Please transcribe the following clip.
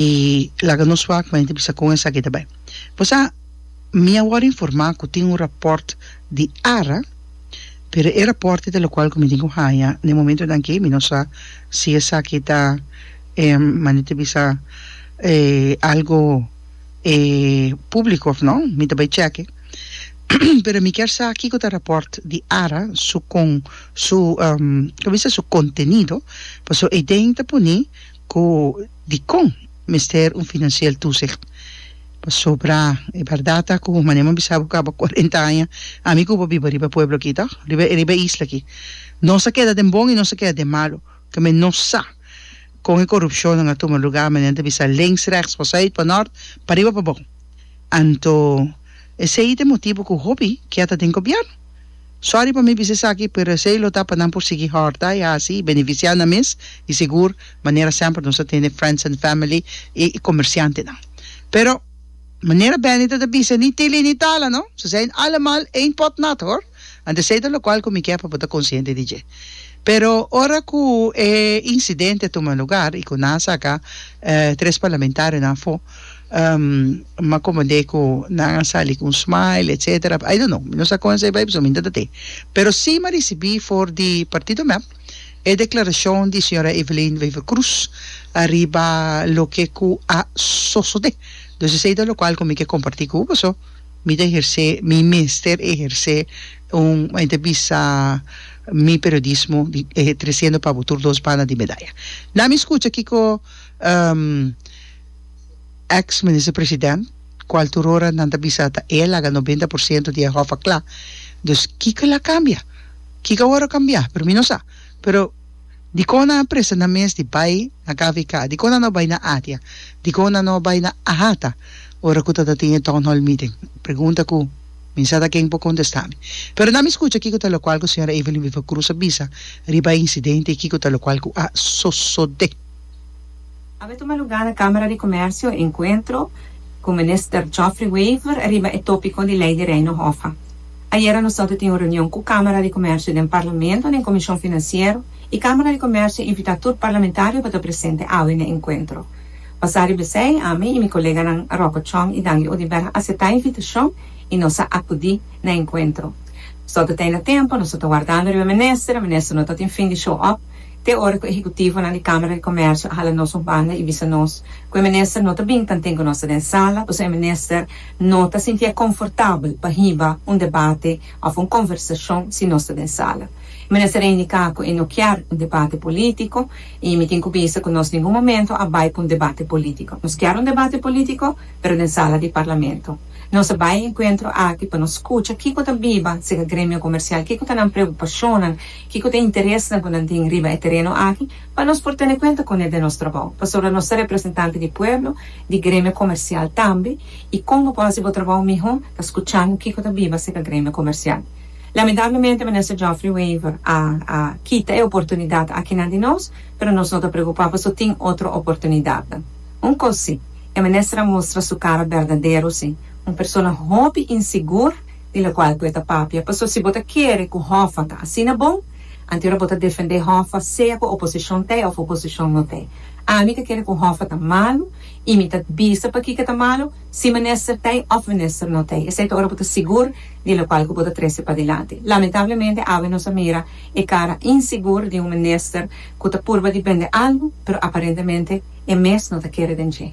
y laga nos wak mende bisa con esaki ta bay. Pues a mi a worde informa cu tin un rapport di ara pero e rapport ita locual cu mi tin cu haya na e momentonan aki mi no sa si esaki ta mane ta bisa algo publico of no mi ta bay cheke pero mi kier sa kico ta rapport di ara su con su contenido pasobra Eiden ta pone ku dikon mester un finansiel tusig. Pasobra e bèrdat ta ku manera mi a bisa bo kaba kuarenta aña ami ku bo a biba riba pueblo aki tòg, riba riba e isla aki. Nos a keda den bon i nos a keda den malu. Tambe nos sa kon e korupshonnan a tuma lugá manera nan ta bisa links rèks, pa sùit, pa nòrt, pa riba pa bou. Anto esei ta e motibu ku hopi kia ta den gobièrnu. Sorry pa mi bisa esaki, pero esei lo ta pa nan por sigui hòrta i hasi i beneficia nan mes, i sigur, manera semper nos a tende friends and family i comerciantenan. Pero, manera Benny ta ta bisa, ni tili ni tala, no? Ze zijn allemaal één pot nat, hoor. Ant esei ta locual cu mi kier pa bo ta consciente di dje. Pero, ora cu e incidente a tuma lugar i cu nan a saca tres parlamentarionan afo, ma como de cu nan a sali cu un smile etc I don't know mi no sa con esey bay pasobra mi no ta te pero si mi a ricibi for di partido mep e declaracion di señora Evelyn Wever Croes ariba loke cu a sosode dus esey ta locual cu mi ke comparti cu bo so mi ta eherce mi mester eherce un como enta bisa mi periodismo di triciendo pa bo tur dos banda di medaya na mi scucha kico Ex Minister President, cual tur ora nan ta bisa ta e laga noventa por ciento di e hof a cla, dus kico el a cambia? Kico awor a cambia? Pero mi no sa. Pero dicon nan a presta nan mes di bay na kvk? Dicon nan no a bay na Atia? Dicon nan no a bay na Ahata ora cu ta ta tin e Town Hall Meeting? Pregunta cu mi sa ta ken por contesta mi. Pero nan mi scucha kico ta locual cu Sra. Evelyn Viva Cruz a bisa riba e incidente y kico ta locual cu a sosode. A bay tuma lugar na Kamera di Komersio enkuentro ku Minister Geoffrey Wever riba e topiko di Lei di Reino Hofa. Ayera nos tabata tin un reunion ku Kamera di Komersio den Parlamento den Komishon Finansiero i Kamera di Komersio invita tur parlamentario pa ta presente awe n'e enkuentro. Basá riba esei ami i mi koleganan Rocco Chong i Dangui Odibera a setá e invitashon i nos a akudí na enkuentro. Nos tabata tey na tempu, nos tabata wardando riba Minister, Minister no tabatin fin di show up. te ora ku ehekutivonan di Kámara di Komèrsio a hala nos un banda i bisa nos ku e minister no ta bini tanten ku nos ta den sala pasobra e minister no ta sintié konfortabel pa hiba un debate òf un konversashon si nos ta den sala. E minister a indiká ku e no kier un debate polítiko i mi tin ku bisa ku nos ningun momentu a bai pa un debate polítiko. Nos kier un debate polítiko pero den sala di Parlamento. Nos a bai e enkuentro aki pa nos skucha kiko ta biba sega Gremio Komersial, kiko ta nan preokupashonnan, Kiko ta e interes nan ku nan tin riba e tereno aki pa nos por tene kuenta kune den nos trabou? Pasobra nos ta representante di pueblo, di gremio komersial tambe i kon bo por hasi bo trabou mihó ta skuchando kiko ta biba aserka gremio komersial. Lamentablemente Minister Geoffrey Wever a a kita e oportunidat akinan di nos, pero nos no ta preokupá pasobra tin otro oportunidatnan. Un kos si, e minister a mustra su kara berdadero si, un persona hopi insigur di locual cu e ta papia, paso si bo ta kere cu Hoffa ta asina bon, anto ora bo ta defende Hoffa sea cu oposicion t'e of oposicion no t'e. Ami ta kere cu Hoffa ta malu y mi ta bisa pakico ta malu, si minister t'e of minister no t'e, esey ta ora bo ta sigur di locual cu bo ta trece padelante. Lamentablemente awe nos a mira e cara insigur di un minister cu ta purba di bende algo, pero aparentemente e mes no ta kere den dje.